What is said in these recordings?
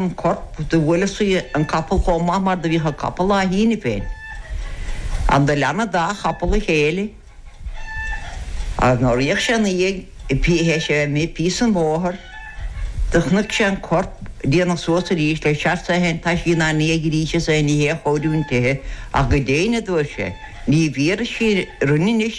an corp. Do bhuail sí an capall comh maith mar do bhíodh a capall á shíneadh féin. Ann do lean a dá chapall a chéile agus nuair fhéach sé ina dhiaidh pé hé sé a mbí píosa den bhóthar do chnuic sé an corp d'éin suas arís le searsa a théann taisí ná ndiaidh arís is é ní hé a chóiriú an tighe ach go déine dúirt sé Ní bhfíor is sí rinne anois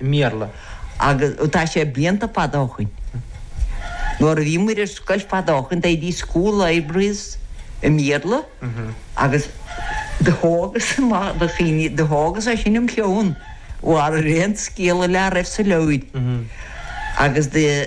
i mBéarla agus tá sé blianta fada ó shin. Nuair a bhí muid ar scoil fada ó shin, they had school libraries i mBéarla agus do thógas amach do chinn, do thógas é sin im' cheann, mar ar aon scéal dá raibh sa leabhar agus do,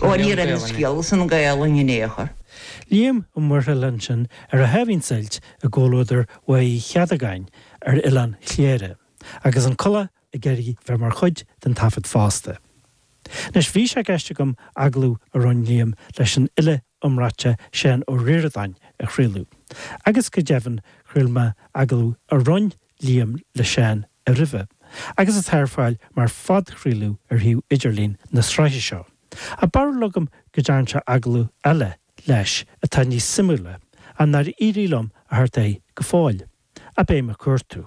Ó, ní raibh an scéal sin as Gaolainn in ao' chor. Liam Ó Muirthile linn ansin ar a sháimhín suilt i gcomhluadar Mhaigh Uí Cheadagáin ar Oileán Chléire, agus an collach ag iarraidh bheith mar chuid den taifead fosta. Anois, bhí sé i gceist agam agallamh a rinn Liam leis an fhile iomráite Seán Ó Ríordáin a chraoladh, agus go deimhin chraol mé agallamh a rinn Liam leisean roimhe agus atá ar fáil mar phodchraoladh ar shuíomh idirlín na sraithe seo. Ach bheartaigh liom go dtearn sé agallamh eile leis atá níos suimiúla, ach nár éirigh liom a theacht air go fóill. Ach beidh mé ag cuartú.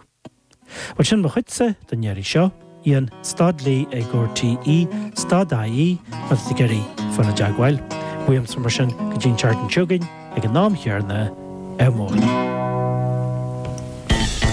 Bhuel sin mo chuidse don iarraidh seo. Ian, Staid Lí é Gor TE, Staid AE, agus de Gerry, Foir na dTeagmháil. Bhuíomsar mar sin go dtí an Tearc an tSiogainn ag an am chéarna ar Mhóin.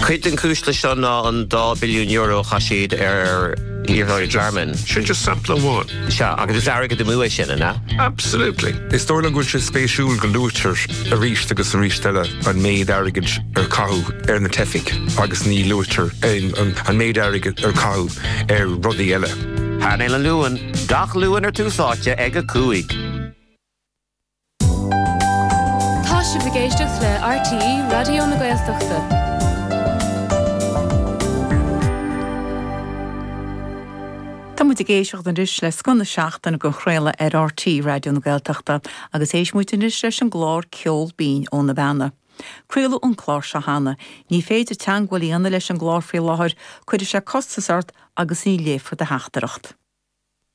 Cuid den cúisle seo ná an €2 billiún a chaith siad ar iarrthóirí Jarman. Sin just sampla amháin. Sea, agus is airgead amú é sin, an ea? Absolutely. Is dóigh liom go bhfuil sé spéisiúil go luaitear arís agus arís eile an méid airgid ar caitheadh ar na teifigh agus ní luaitear an méid airgid ar caitheadh ar rudaí eile. Painéal an Luain, gach Luan ar Tús Áite ag a cúig. Tá sibh ag éisteacht le RTÉ Raidió na Gaeltachta. Tá muid ag éisteacht anois le Scoth na Seachtaine dhá chraoladh ar RTÉ Raidió na Gaeltachta agus éistfidh muid anois leis an gclár Ceol Binn ó na Beanna. Craoladh an clár seo cheana. Ní féidir teangmháil a dhéanamh leis an gclár faoi láthair, cuirfidh sé costas ort agus ní léifear do theachtaireacht.